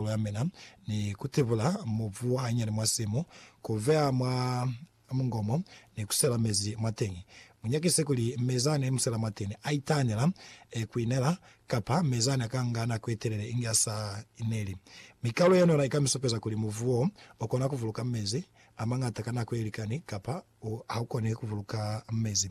Kolo ya mina ni ku tibula mubu wa hanyani mwa simu, ku veya mwa mungomo, ni ku sela mezi mwateñi. Mu nyakise kuli mezi a ne mu sela mwateñi a itahanela ku inela, kapa mezi a ne a ka nga nako ye telele inge a sa ineli. Mi kalo yene yona i ka mi supeza kuli mubu wo, o kona ku buluka mezi a mañata ka nako ye likani, kapa u haukoni ku buluka mezi.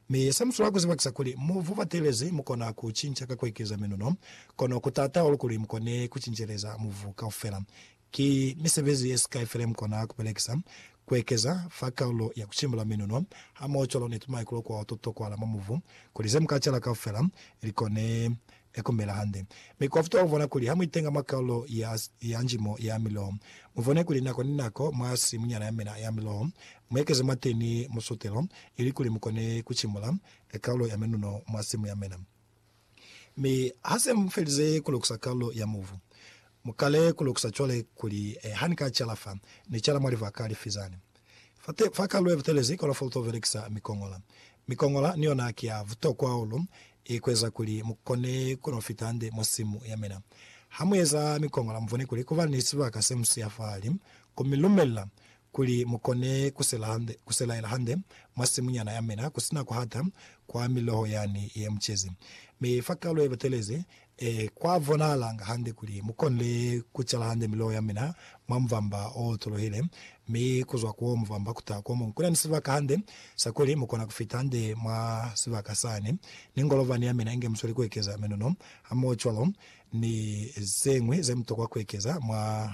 Mi sa musula ku zibakisa kuli mu vu batelezi, mu kona ku cinca ka ku ekeza minuno, kono ku taata hahulu kuli mu kone ku cinceleza muvu kaufela. Ki misebezi ye sikai fela ye mu kona ku belekisa, ku ekeza fa kaulo ya ku cimbula minuno hamoho cwalo ni tumaikulu kwa ho to tokwahala mwa muvu, kuli ze mu ka cala kaufela li kone ya kumbela hande. Mi kwa futuha kuvona kuli ha muitenga mwa kalulo ya yanjimo ya miloho, muvone kuli nako ni nako mwa simunyana yamina ya miloho muekeze mwateni musutelo, ilikuli mukone kucimula kalulo ya menuno mwa simu yamina. Mi hase mufelize kulukusa kalulo ya mubu, mukale kulukusa cwale kuli, Hanika cala fa, ni cala mwa livaka lifizani. Fa kalu ye butelezi kola fa uto belekisa mikongola. Mikongola ni yona ki ya butokwa hahulu i ku eza kuli mu kone ku no fita hande mwa simu ya mina. Ha mu eza mikongola, mu bone kuli ku ba ni sibaka se mu siya fahali, ku mi lumelela kuli mu kone ku sela hande, ku selaela hande mwa simunyana ya mina ku si na ku hata kwa miloho yani ye mu cezi. Mi fa kalu ye butelezi, Ee, kwa bonahalanga hande kuli mu konile ku cala hande miloho ya mina mwa mubamba o otuluhile, mi ku zwa ku wo mubamba ku taha ku omuñwi. Ku na ni sibaka hande sa kuli mu kona ku fita hande mwa sibaka sani, ni ngolovani ya mina inge musweli ku ekeza minono, hamohocwalo ni zeñwi ze mu tokwa ku ekeza mwa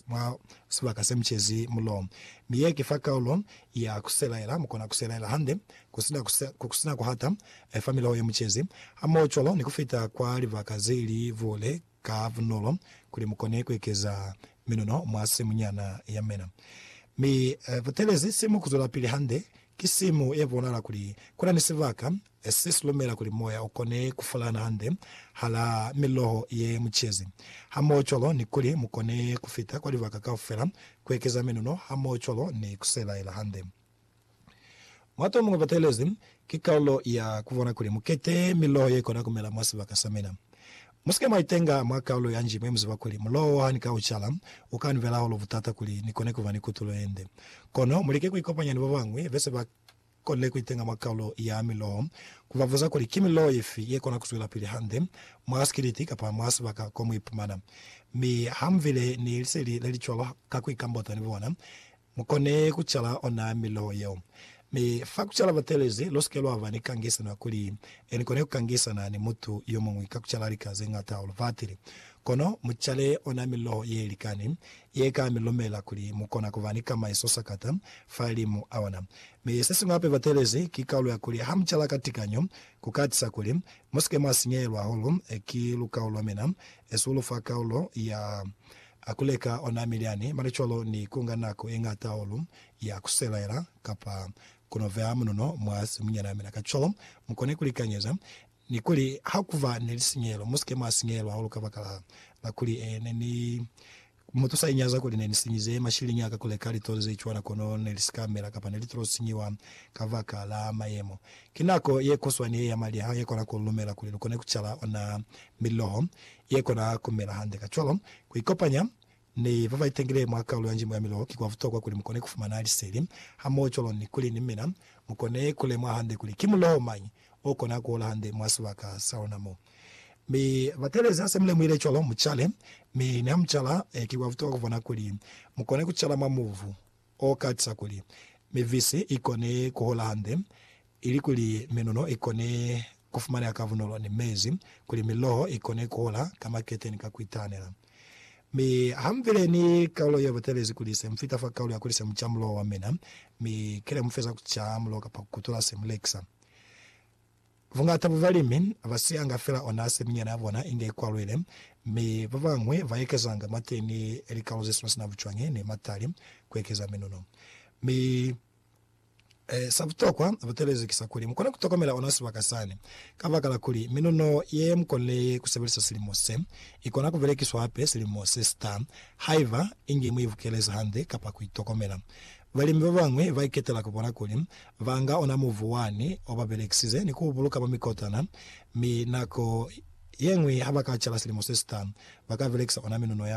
mwa sibaka se mucezi mulo. Mi ye ki fa kaulo ya kuselaela, mukona kuselaela hande, kusina ku, kusina kuhata, fa miloho ye mucezi, hamoho cwalo ni kufita kwa libaka ze li buule ka bunolo, kuli mukone kuekeza minuno mwa simu nyana ya mena. Mi, butelezi simu kuzwelapili hande, ki simu ye bonahala kuli kuna ni sibaka Esi si lumela kuli moya u kone ku fulana hande hala miloho ye mu cezi, hamohocwalo ni kuli mu kone ku fita kwa libaka kaufela, ku ekeza menuno, hamohocwalo ni ku sebahela hande. Mwa to muñwi batelezi, ki kalulo ya ku bona kuli mu kete miloho ye kona ku mela mwa sibaka sa mina. Mu si ke mwa itenga mwa kalulo ya nji mwe mu ziba kuli muloho ha ni ka u cala, u ka ni bela hahulu butata kuli ni kone ku ba ni kutulo ye nde. Kono mu like ku ikopanya ni ba bañwi be se ba. Kone kuitenga mwa kalulo ya miloho, kubabuza kuli ki miloho yefi yekona kuzwelapili hande mwa sikiliti kapa mwa sibaka ko muipumana. Mi hamubile ni liseli lelicwalo ka kuikambota ni bona, mukone kucala ona miloho yeo. Mi fa kucala batelezi, lusike lwaba ni kangisano kuli nikone kukangisana ni mutu yomuñwi ka kucala lika zeñata hahulu fatili. Kono mucale ona miloho yelikani, Ye ka mi lumela kuli mu kona ku ba ni kamaiso sakata fahalimu a ona. Mi se siñwi hape batelezi ki kaulu ya kuli ha mu cala ka tikanyo, ku ka tisa kuli mu si ke mwa sinyeyelwa hahulu ki lukau lwa mina, esulu fa kaulo ya ku leka ona milyani, mane cwalo ni ku nga nako ye ñata hahulu ya ku selaela kapa ku no beha munono mwa simunyana mina. Kacwalo, mu kone ku likanyeza. Ni kuli, Ha ku ba ni lisinyelo, mu si ke mwa sinyelwa hahulu kabakala la kuli ne ni mutusa inyaza kuli ne ni sinyize mashilini a ka ku leka litulo ze cwana kono ne li si ka mela kapa ne li tilo sinyiwa kabakala mayemo. Ki nako ye kuswani ye ya maliha ye kona ku lu lumela kuli lu kone ku cala ona miloho ye kona ku mela hande. Kacwalo, ku ikopanya Ni ba ba itangile mwa kalulo ya njimo ya miloho ki kwa butokwa kuli mu kone ku fumana liseli hamoho cwalo ni kuli ni mina mu kone ku lemuha hande kuli ki muloho mañi o kona ku hola hande mwa sibaka sa luna mo. Mi batelezi ha se mu lemuhile cwalo, mu cale. Mi niha mu cala, ki kwa butokwa ku bona kuli mu kone ku cala mwa mubu. o katisa kuli mivisi i kone ku hola hande, ili kuli minuno i kone ku fumaneha ka bunolo ni mezi kuli miloho i kone ku hola ka makete ni ka ku itahanela. Mi ha mu bile ni kaulo ye batelezi kuli se mu fita fa kaulo ya kuli se mu ca muloho wa mina, mi ki ne mu feza ku ca muloho kapa ku kutula se mu lekisa. Bungata bwa balimi ba siyanga fela ona seminyana ya bona inge ikwalwile, mi ba bañwi ba ekezanga mate ni likalo ze sina sina bucwañi ni matali ku ekeza minuno. Mi sa butokwa butelezi ki sa kuli mukone ku tokomela ona sibaka sani, kabakala kuli minuno ye mukonile ye ku sebelisa silimo se, ikona ku belekiswa hape silimo se sita, haiba inge mu ibukelezi hande kapa ku itokomela. Balimi ba bañwi ba iketela ku bona kuli Ba nga ona mubu wani o ba belekisize ni ku u buluka mwa mikotana, mi nako ye ñwi ha ba ka cala silimo se si ta, ba ka belekisa ona minuno yani.